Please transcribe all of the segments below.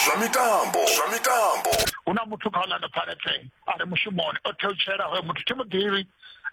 zwa mitambo zwa mitambo hu na muthu kha orlando pirates a re mushumoni o theutshela hoyo muthu thi mu ḓivhi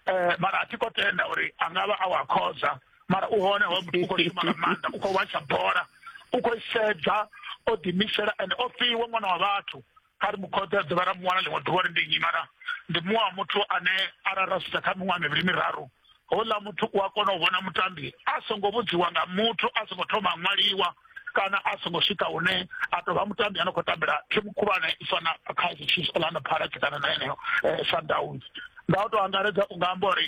um mara a thi ko tenda uri a nga vha a wa khoza mara u hone hoyo muthu u khou shuma nga maanḓa u khou watsha bola u khou i sedza o ḓiimisela ende o fhiwa ṅwana wa vhathu kha ri mu khothe a dovha ra mu wana ḽiṅwe ḓuvha ri ndi nnyi mara ndi muṅwe wa muthu ane arali ra sedza kha miṅwaha mivhili miraru houḽa muthu u a kona u vhona mutambi a songo vhudziwa nga muthu a songo thoma a ṅwaliwa kana a songo swika hune a tou vha mutambi a no khou tambela thimu khulwane i fana kha chiefs orlando pirates kana na yeneyo eh, sundowns nga u tou angaredza u nga amba uri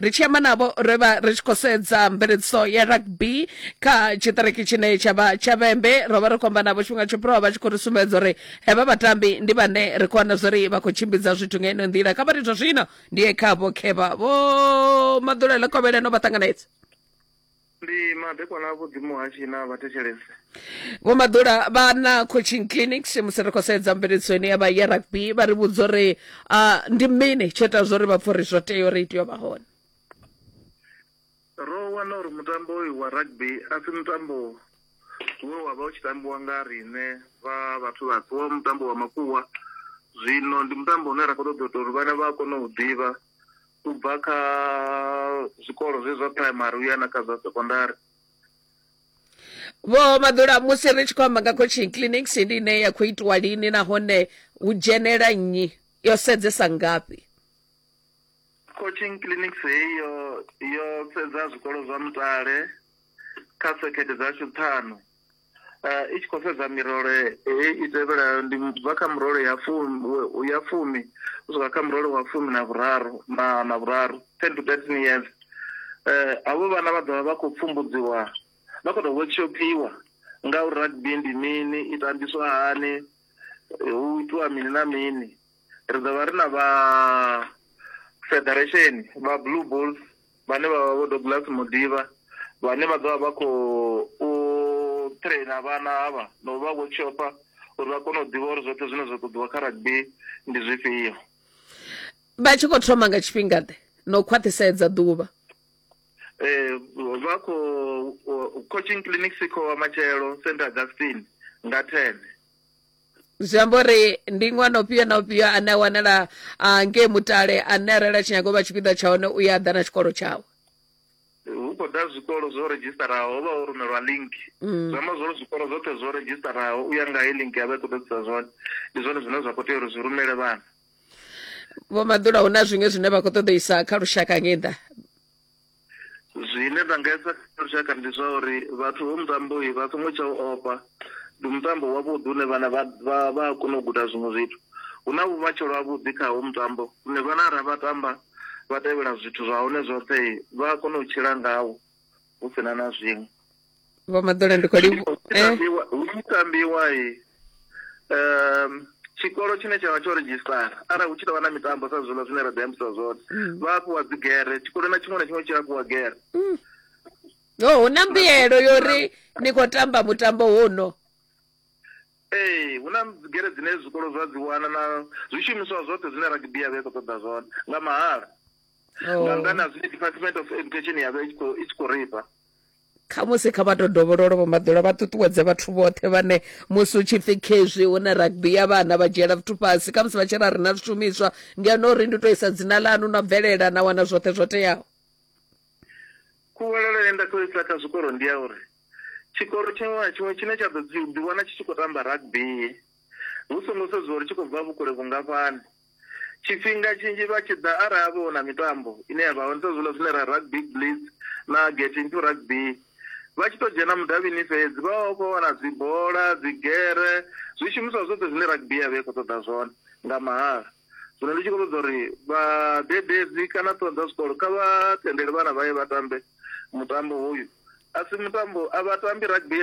ri tshi amba navho ro vha ri tshi khou sedza mveledziso ya rugby kha tshiṱiriki tshine tsha vha tsha vhembe ro vha ri khou amba navho tshifhinga tsho fhiraho vha tshi khou ri sumbedza uri hevha vhatambi ndi vhane ri khou wana zwori vha khou tshimbidza zwithu nga ino nḓila kha vhari zwa zwino ndi ye kha vho khevha vho maḓulele kovheleno vha ṱanganedza ndi madekwana a vhuḓi muhashi na vhathetshelesi vho maḓula vha na coaching clinics musi ri khou sedza mveledziso ine ya vha ya rugby vha ri vhudza uri ah, ndi mini tsho ita zwo ri vha pfa uri zwo tea uri itiyo vha hone ro wana uri mutambo uyu wa rugby a si mutambo we wa vha u tshi tambiwa nga riṋe vha vhathu vhatswu wa mutambo wa makuwa zwino ndi mutambo une ra khou ṱoḓa u ita uri vhana vha kone u ḓivha u bva kha zwikolo zwe zwa primary u ya na kha zwa secondary vho maḓula musi ri tshi khou amba nga coaching clinics ndi ine ya khou itiwa lini nahone hu dzhenela nnyi yo sedzesa ngafhi coaching clinics heyo yo sedza zwikolo zwa mutale kha sekhethe dzashu ṱhanu Uh, i tshi khou sedza mirole hei i tevhelayo ndi bva kha murole ya fumi ya fumi u swika kha murole wa fumi na vhuraru na na vhuraru ten to thirteen years um havho vhana vha ḓovha vha khou pfumbudziwa vha khou tou workshopiwa nga uri rugby ndi mini i tambiswa hani hu itiwa mini na mini ri ḓovha ri na vha federation vha blue bulls vhane vha vha vho Douglas Muḓivha vhane vha ḓo vha vha khou traina vhana havha na u vha vho tshopa uri vha kone u ḓivha uri zwoṱhe zwine zwa ṱoḓiwa kha rugby ndi zwifhio vha tshi khou thoma nga tshifhinga ḓe na u khwaṱhisedza ḓuvha eh vha khou coaching clinic sikho wa matshelo st augustine nga 10 zwi amba uri ndi ṅwana ufhio na ufhio ane a wanala ah, ngei mutale ane arali a tshi nyaga u vha tshipiḓa tsha hone u ya ḓa na tshikolo tshawe hu khou ḓa zwikolo zwo redzhistaraho ho vha ho rumelwa link Mm. zwi amba zwori zwikolo zwoṱhe zwo redzhistaraho u ya nga he link ya vha i khou ḓadzisa zwone ndi zwone zwine zwa khou tea uri zwi rumele vhana vho maḓula hu na zwiṅwe zwine vha khou ṱoḓeisa kha lushaka ngei ḓa Zwine nda nga esa kha lushaka ndi zwa uri vhathu ho mutamboyi vha songo tsha u ofha ndi mutambo wavhuḓi une vhana vha vha a kona u guda zwiṅwe zwithu hu na vhumatshelo havhuḓi kha ho mutambo une vhana ara vha tamba vha tevhela zwithu zwa hone zwoṱhe vha a kona u tshila ngawo hu sina na zwiṅwe vho maḓole ndi khou livhu eh hu tshi tambiwa i um tshikolo tshine tsha vha tsho redzhisitara arali hu tshi tou vha na mitambo sa zwiḽa zwine ra ḓi ambisa zwone vha a fhiwa dzigere tshikolo na tshiṅwe na tshiṅwe tshi a fhiwa gere yo hu na mbuyelo yo ri ni khou tamba mutambo wono ee hu na dzigere dzine zwikolo zwa dzi wana na zwishumiswa zwoṱhe zwine rugby ya vha i khou ṱoḓa zwone nga mahala nga nnḓa na zwi department of education ya vha i tshi khou- i tshi khou rifha khamusi kha vha to dovhololo vho maḓula vha ṱuṱuwedze vhathu vhoṱhe vhane musi u tshi pfi khezwi hu na rugby ya vhana vha dzhiela zwithu fhasi khamusi vha tshi ra ri na zwishumiswa ngeno ri ndi to isa dzina ḽanu na bvelela na wana zwoṱhe zwo teaho khuvhalelo ye nda khou isa kha zwikolo ndi ya uri tshikolo tshiṅwe na tshiṅwe tshine tsha ḓo ḓiwana tshi tshi khou tamba rugby hu songo sedziwa uri tshi khou bva vhukule vhungafhani Tshifhinga tshinzhi vha tshi ḓa arali ha vha hu na mitambo ine ya vha hone sa zwiḽa zwine ra Rugby Blitz na Get Into Rugby, vha tshi tou dzhena mudavhini fhedzi vha vha vha khou wana dzibola, dzigere, zwishumiswa zwoṱhe zwine rugby ya vha i khou ṱoḓa zwone nga mahala. Zwino ndi tshi khou ṱoḓa uri vhadededzi kana ṱhoho dza zwikolo kha vha tendele vhana vha ye vha tambe mutambo hoyu. A si mutambo, a vha tambi rugby.